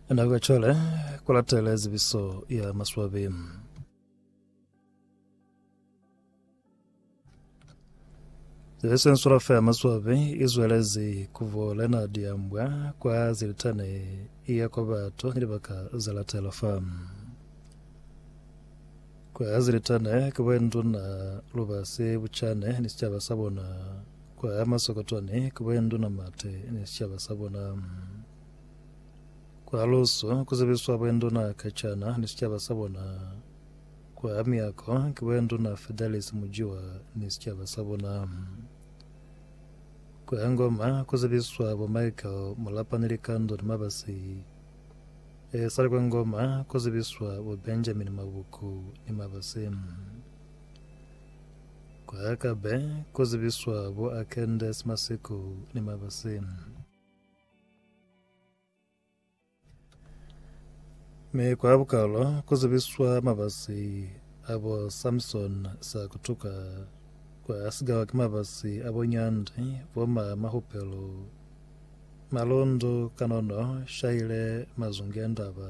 Ena kwa chole ku latela zibiso ya maswabi. Zibiso ya nsulafa ya maswabi izwelezi kuvole na diambwa kwa zilitane iya kwa batu ni libaka za latela fa kwa zilitane kuba nduna lubasi buchane ni sicaba sa bona Kwa ya Masokotwane, kubo ya Nduna Mate ni sicaba sa bona. Kwa Lusu, ku zebiswa bo ya Nduna Kacana ni sicaba sa bona. Kwa ya Miyako, kubo ya Nduna Fidelis Mujiwa ni sicaba sa bona. Kwa ya Ngoma, ku zebiswa bo Michael Mulapa ni Likando ni Mabasi. E sali kwa Ngoma, ku zebiswa bo Benjamin Mabuku ni Mabasi. Kuya ka be ku zibiswa bo Akendes Masiku ni Mabasi. Mi kwa bukalo ku zibiswa mabasi a bo Samson sa kutuka, kwa sigawa ki mabasi a bo Nyandi, bo ma Mahupelo, Malundu, Kanono, Shaile, Mazungiandaba.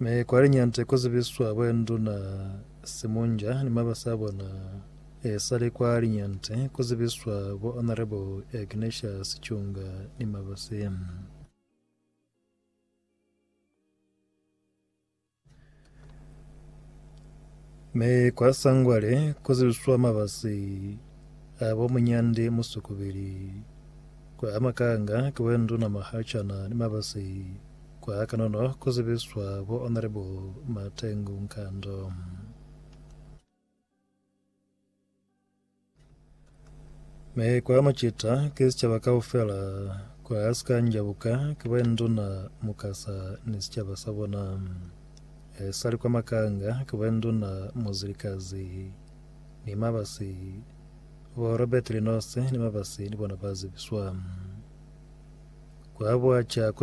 Mi kwa liñante ku zibiswa boenduna Simunja ni mabasi a bona, e sali kwa liñante ku zibiswa bo Honourable Ignatius Chunga ni mabasi. Mi kwa Sangwale ku zibiswa mabasi a bo Munyandi Musukubili. Kwa Makanga ki boenduna Mahachana ni mabasi. Kwa kanono ku zibiswa bo Honourable Matengu Nkando. Mi kwa macita ki sicaba kaufela, kwa sika njabuka ki ba Nduna Mukasa ni sicaba sa bona. Esali kwa Makanga ki ba Nduna Muzilikazi ni Mabasi, bo Robert Linose ni Mabasi ni bona ba zibiswa. Kwa Buaca ku